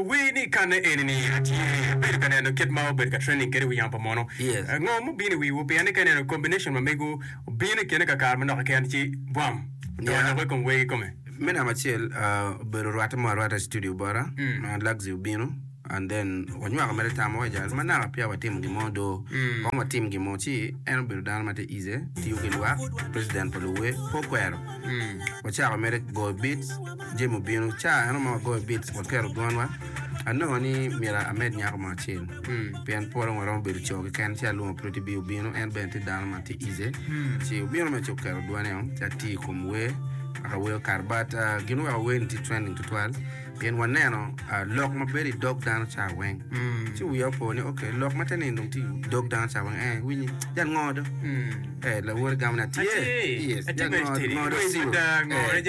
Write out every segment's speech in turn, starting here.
Wer ni kanne eni ni atye abedo ka neno kit ma obedo ka trending kede i wi yamo pa mono. Ngo ma obino i wiwu pienni ka ineno combination ma mego obino i kine kakare manok keken ci bwam odonyo loko i kom wer kikome? Me namba acel obedo rwatte mo arwata i studio bota ma Luxy obino. and then wanywako mere tam wa jal manaka peya watimo gin mo do kong watim gin mo ci en obedo dano ma tye ize tiyo ki lwak president pa luwe pe okwero wacako mere goyo beats jami obino ca eno ma wagoyo beats waketo gonwa anongo ni myero amed nyako mo acel pien pol dong waromo bedo co keken ci alwongo Pretty B obino en bene tye dano ma tye ize ci obino mere ci oketo dwane o ci atiyo i kom wer wek awer okato but ah, gin ma wek awer-ni tye trending tutwal Pien waneno lok ma bedo i dog dano ca weng, ci wiya opo ni, Ok, lok ma teni dong tye i dog dano ca weng. Ee, winyi, jal ngo do? Ee, lawote gamo ni, Atye. Yes, jal ngo do? Ngo do siro? Ee,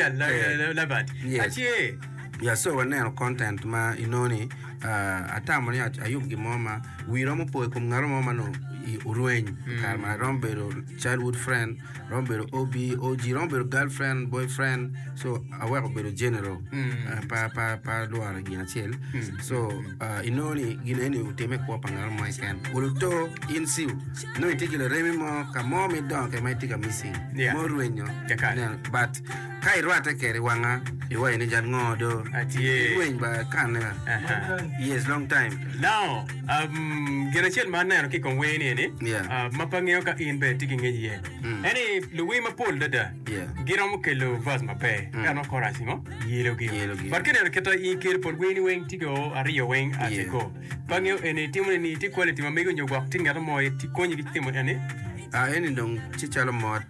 yes. Ya, so waneno content ma inongo ni atamo ni ayub gin mo ma wii romo po i kom ngatu mo ma onongo orweny i kare magi. Romo bedo childhood friend. romo bedo OB, OG, romo bedo girlfriend, boyfriend. So aweko bedo general. Ah, pa pa pa lworo gin acel. So ah, inongo ni gin eni otime kwo pa ngaro mo keken. Uluto in siu. Inongo itye ki laremi mo ka mo midongo ke ma itye ka missing. Yeah. Mo rwenyo. Kekare. Ineno, But Ka irwatte keri wanga iwaci ni jal ngo do atye ilweny ba kane yes long time now um, gin acel ma aneno ki kom wer ni eni yeah. uh, ma pa ngeyo ka in be tye ki ngec iye mm. eni luwi mapol dada yeah. giromo kelo vas maber mm. kano korac ngo yelo gi but kineno kita i kelo pol wer ni weng tye go ariyo weng ate go pa ngeyo eni timo ni tye quality ma mego nyo gwok tye ngeto mo tye konyi ki timo eni ah eni dong tye calo mot